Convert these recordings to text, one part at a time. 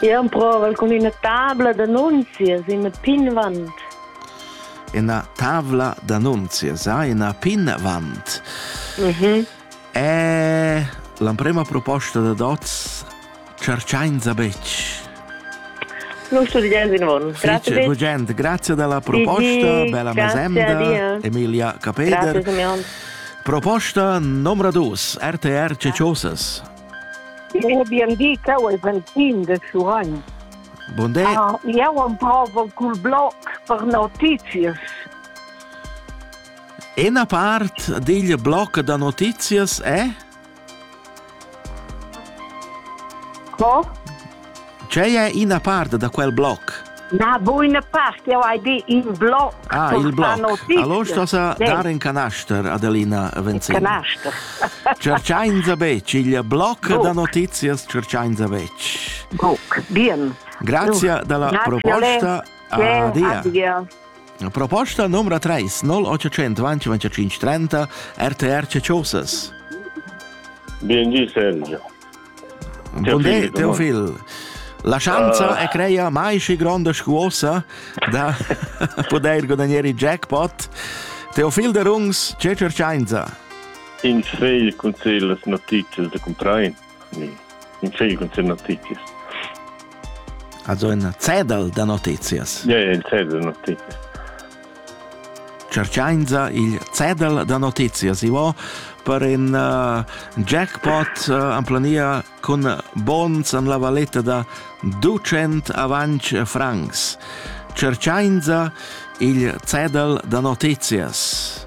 Jeu emprovel cun ina tabla d'annunzias in pinvant. Ina tavla d'annunzias, ha ina pinvant. Mhm. E l'emprema proposta da Dots cerchainza betg. Non studiains in von. Grazie Fece, gente, grazie della proposta, Di, bella grazie, mesenda, Dia. Emilia Capeder. Grazie, Simeon. Proposta numero 2, RTR Ceciosas. E bien di, cau ei ventin de Suragn. Bonde. Ah, eu am pavel cul blog per notizias. Una part degl blog da notizias è? Co? Tgei è ina part da quel bloc? Na, bu ina part, eu hai dit in bloc. Ah, il bloc. Allora stasa sì. dar in canaster, Adelina Venzina. Canaster. Cerciainza bec, il bloc Buc. da notizias cerciainza bec. Buc, bien. Grazie dalla Grazie proposta. Adia. Adia. Proposta numero 3, 0800 20 30, RTR Ceciosas. Bien, Sergio. Buondé, teu figl. La schanza uh. è creia mai schi gronda scuosa da poter guadagnare il jackpot. Teu figl de rungs, ce cercainza? In fegl cun las notizias de comprar. In fegl cun las notizias. Also in zettel de notizias. Ja, ja, in zettel de notizias. Tscherchainsa il cedel da notizias ivo per in uh, jackpot uh, en plania cun bons en la valetta da 200 avanc francs. Tscherchainsa il cedel da notizias.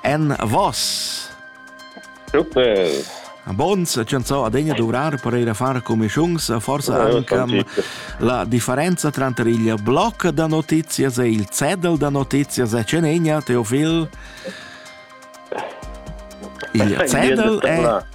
Envos! Super! Bons chanzò adegna dovrar per ir a far comischiuns, forse anche la differenza tranter il blog da notizias e il zettel da notizias è cenegna, Teofil. Il zettel è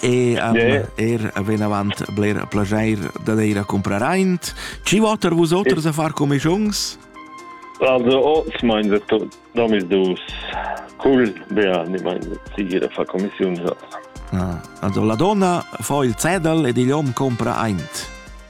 e um, yeah. er venavant bler plageir da eir a comprar aint. Ci voter vus oters e... a far comischungs? Also, oz mein se tu, domis dus cool, bea, ni mein sigira fa commissiun. Ah, also la donna fa il cedel ed igl hom compra aint.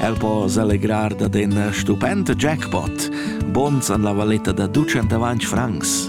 El po selegrar dad in stupent jackpot, bons an la valetta da ducent francs.